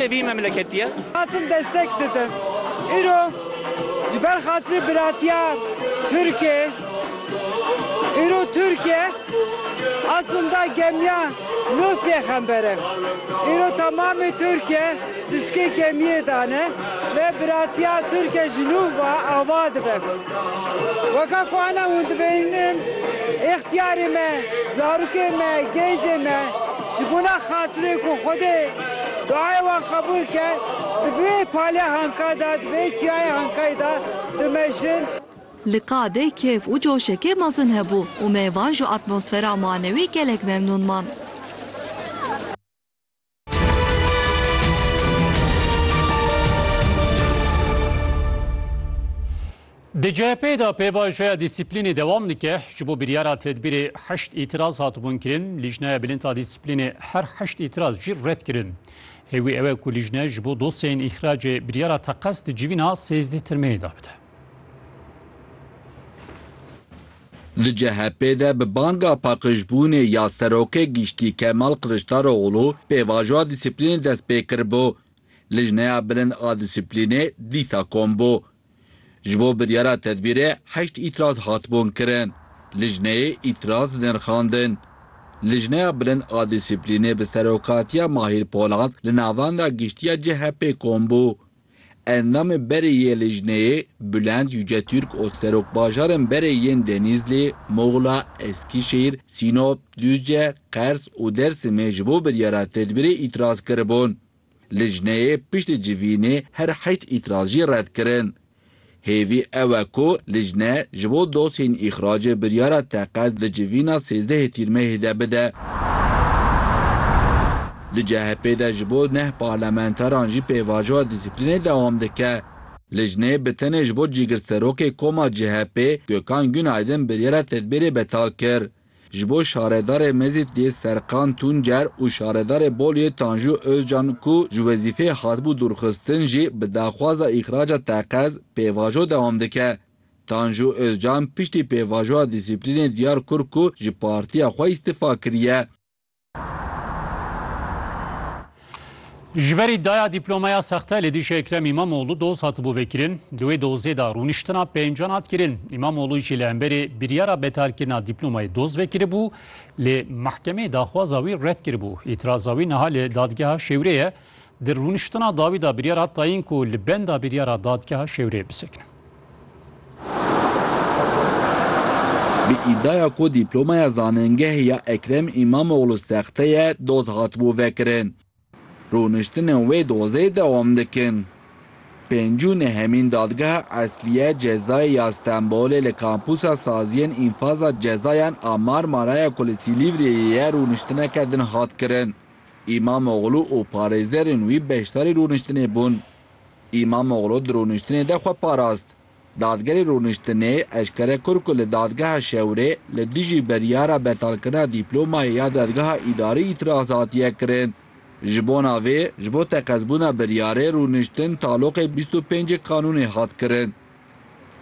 Ev vî memleketî ye. Hatin destek didin. Îro ji ber xatirî biratiya Tirkê îro Tirkê eslinda gemiya Nuh pêxember e. Îro temamê Tirkê diskê gemiyê de ne lê biratiya Tirkê ji Nuh ve ava dibe. Weke ku ena hûn dibînin îxtiyarê me, zarokê me, gêncê me, Ji bona xatirê ku Xwedê duayê wan qebûl ke, di vê palê hanka de, di vê çiyayê hankayê de dimejin. Li qadê kêf û coşekê mezin hebû û me van ji atmosfera manewî gelek memnûn man. Di CHP'ê de pêvajoya dîsîplînê dewam dike. Ji bo biryara tedbîrê heşt îtiraz hatibûn kirin. Lîjneya Bilind a Dîsîplînê her heşt îtiraz jî red kirin. Hêwî ew e ku lîjne ji bo dosyeyên îxracê biryara teqez di civîna sêzdeh tirmeyê de bide. Di CHP'ê de bi banga paqijbûnê ya Serokê Giştî Kemal Kiliçdaroglû pêvajoya dîsîplînê dest pê kiribû. Lîjneya Bilind a Dîsîplînê dîsa kom bû. Ji bo biryara tedbîrê heşt îtiraz hatibûn kirin. Lijneyê îtiraz nirxandin. Lijneya Bilind a Dîsîplînê bi serokatiya Mahîr Polat li navenda giştiya CHP'ê kom bû. Endamê berê yê lijneyê Bulent Yücetürk û serokbajarên berê yên Denîzlî, Muxla, Eskişehîr, Sînop, Duzce, Qers û Dêrsimê ji bo biryara tedbîrê îtiraz kiribûn. Lijneyê piştî civînê her heşt îtirazî red kirin. Hêvî ew e ku lijne ji bo dosyeyên îxracê biryara teqez di civîna sêzdehê Tîrmeyê de bide. Di CHP'ê de ji bo neh parlamenteran jî pêvajoya dîsîplînê dewam dike. Lijneyê bi tenê ji bo cîgirserokê koma CHP'ê Gökhan Günaydın biryara tedbîrê betal kir. Ji bo şaredarê Mezîtiyê Serkan Tuncer û şaredarê Bolyê Tanju Ozcan ku ji wezîfeyê hatibû dûrxistin jî bi daxwaza îxraca teqez pêvajo dewam dike. Tanju Ozcan piştî pêvajoya dîsîplînê diyar kur ku ji partiya xwe îstifa kiriye. Ji berî daya dîplomeya sexte li dîşê Ekrem Îmamoğlu doz hatibû vekirin, di wê dozê de rûniştina pêncan hat kirin. Îmamoğlu jî li hemberê biryara betalkirina dîplomayê doz vekiribû, lê mehkemeyê daxwaza wî red kiribû. Îtiraza wî niha li dadgeha Şêwrê ye. Di rûniştina dawî de biryar hat tayin ku li benda biryara dadgeha Şêwrê bisekine. Bi îdiaya ku dîplomaya zanîngehê ya Ekrem Îmamoglû sexte ye doz hatibû vekirin. Rûniştinên wê dozê dewam dikin. Pêncî û nehemîn Dadgeha Eslîye Cezayê ya Stenbolê li Kampûsa Saziyên Înfaza Cezayan a Marmaraya ku li Sîlîvriyeyê ye rûniştineke din hat kirin. Îmamoglû û parêzerên wî beşdarî rûniştinê bûn. Îmamoglu di rûniştinê de xwe parast. Dadgerê rûniştinê eşkere kir ku li Dadgeha Şewrê li dijî biryara betalkirina dîplomayê ya Dadgeha Îdarî îtîraz hatiye kirin. Ji bona vê, ji bo teqezbûna biryarê rûniştin taloqê bîst û pêncê kanûnê hat kirin.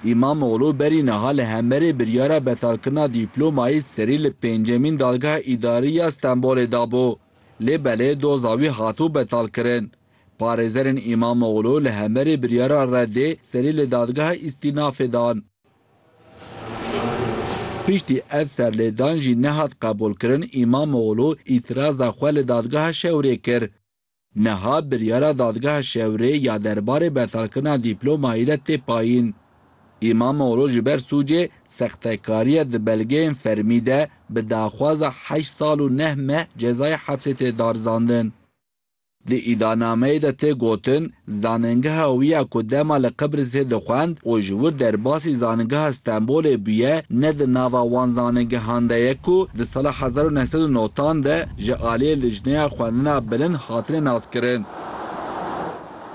Îmamoglu berî niha li hemberê biryara betalkirina dîplomayê serî li pêncemîn Dadgeha Îdarî ya Stenbolê dabû, lê belê doza wî hatibû betalkirin. Parêzerên Îmamoglû li hemberî biryara reddê serî li Dadgeha Îstînafê dan. Piştî ev serlêdan jî nehat qebûlkirin, Îmamoglû îtiraza xwe li Dadgeha Şewrê kir. Niha biryara Dadgeha Şewrê ya derbarê betalkirina dîplomayî de tê payîn. Îmamoglû ji ber sûcê sextekariya di belgeyên fermî de bi daxwaza heşt sal û neh meh cezayê hepsê tê darizandin. Di îdanameyê de tê gotin, zanîngeha wî ya ku dema li Qibrîsê dixwend û ji wir derbasî zanîngeha Stenbolê bûye ne di nava wan zanîngehan de ye ku di sala hezar û neh sed û notan de ji aliyê Lijneya Xwendina Bilind hatine naskirin.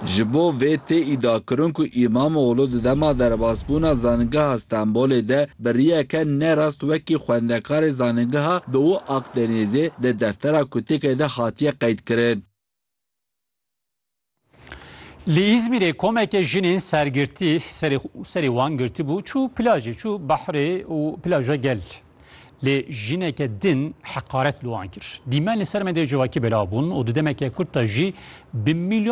Ji bo vê tê îdiakirin ku Îmamoglû di dema derbasbûna Zanîngeha Stenbolê de biriyeke ne rast wekî xwendekarê zanîngeha Doğu Akdenizê di deftera kutêkê de hatiye qeydkirin. Li Îzmîrê komeke jinên sergirtî serê serê wan girtibû çû plajê, çû behrê û plaja gel. Lê jineke din heqaret li wan kir. Dîmen li ser medyaya civakî belav bûn û di demeke kurt de jî bi mîlyonan